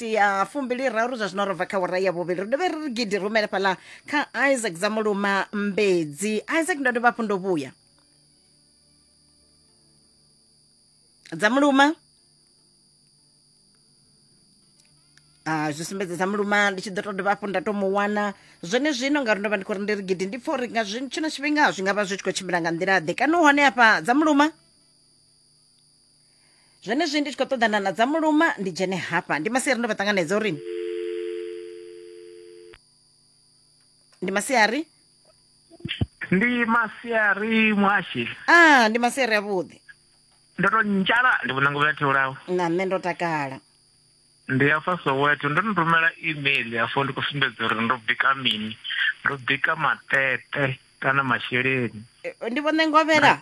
miniti ya fumbili raru zwa zwino ro bva kha wara ya vhuvhili ri dovhe ri gidi rumele fhaḽa kha isaac dza muluma mbedzi isaac ndo dovha hafhu ndo vhuya dza muluma Ah, zwi sumbedza dza muluma ndi tshi ḓo to dovha hafhu nda to mu wana zwone zwino ngauri ndo vha ndi khou ri ndi ri gidi ndi pfa uri nga zwi- tshino tshifhinga zwi nga vha zwi tshi khou tshimbila nga nḓila ḓe kana u hone hafha dza muluma zwenezwi ndi tshi khou ṱoḓana na dza muluma ndi dzhene hafha ndi masiari ndo vha ṱanganedza uri ndi masiari ndi masiari mwashi ah ndi masiari avhuḓi ndo to ntshala ndi vhona nguvha theulaho na nṋe ndo takala ndi ya fa soweto ndo no rumela email yafho ndi khou sumbedza uri ndo bika mini ndo bika matete kana masheleni Eh, ndi vhone ngovhela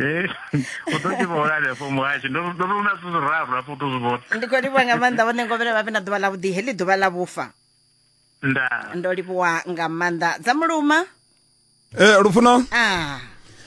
Eh, u ḓo tshi vhona hanefho muhashi ndo ndo runa zwithu zwiraru hafho u ḓo zwi vhona ndi khou livhuwa nga maanḓa vhone ngovhele vha vhe na ḓuvha ḽavhuḓi heḽi ḓuvha ḽa vhufa ndaa ndo livhuwa nga maanḓa dza muluma Eh, Lufuno, ah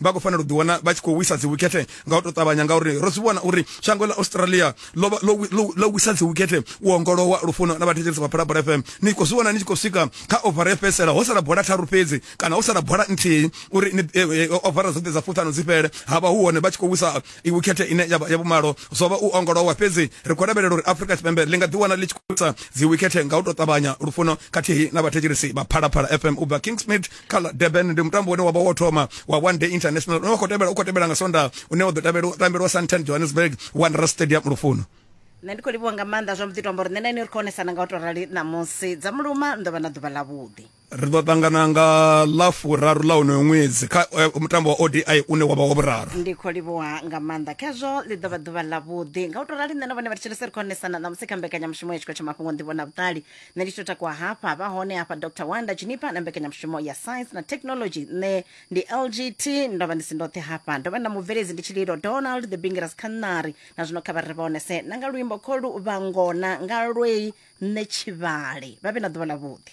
vha khou fanela u ḓiwana vha tshi khou wisa dzi wikhethe nga u tou ṱavhanya ngauri ro zwi vhona uri shango ḽa australia ḽo wisa dzi wikhethe u ongolowa lufuno na vhathetshelesi vha phalabora fm ni khou zwi vhona ni tshi khou swika kha ovara ya fhedzisela ho sala bola tharu fhedzi kana ho sala bola nthihi uri eh, eh, ovara dzoṱhe dza fuṱhano dzi fhele ha vha hu hone vha tshi khou wisa wikhethe ine ya vhumalo zwo vha u ongolowa fhedzi ri khou lavhelela uri afrika tshipembe ḽi nga ḓiwana ḽi tshi khou wisa dzi wikhethe nga u tou ṱavhanya lufuno khathihi na vhathetshelesi vha phalaphala fm u bva kingsmid kha ḽa durban ndi mutambo une wavha wo thoma wa one day international une wa khou tevhela u khou tevhela nga sonda une wa ḓo tabela- tambelwa santan johannesburg wanderers stadium lufuno nṋe ndi khou livhuwa nga maanḓa zwa mbuḓi to amba uri nṋe na ini ri khou onesana nga u to rali ṋamusi dza muluma ndo vha na ḓuvha ḽa vhuḓi ri ḓo ṱangana nga ḽa furaru ḽa unoyo ṅwedzi kha eh, mutambo wa odi une wavha wa vhuraru ndi khou livhuwa nga maanḓa khezwo ḽi ḓo vha ḓuvha ḽa vhuḓi nga u to rali nṋe na vhone vha thetshelese ri khou onesana ṋamusi kha mbekanyamushumo ya tshikho tsha mafhungo nḓivho na vhuṱali nṋe ndi tshi to takuwa hafha vha hone hafha dr wanda jinipa na mbekanyamushumo ya science na technology nṋe ndi lgt ndo vha ndi si ndoṱhe hafha ndo vha na mubveledzi ndi tshililo donald the bingeras khanari na zwino kha vha ri vhonese na nga luimbo kholu vhangona nga lwei nṋe tshivhale vha vhe na ḓuvha ḽa vhuḓi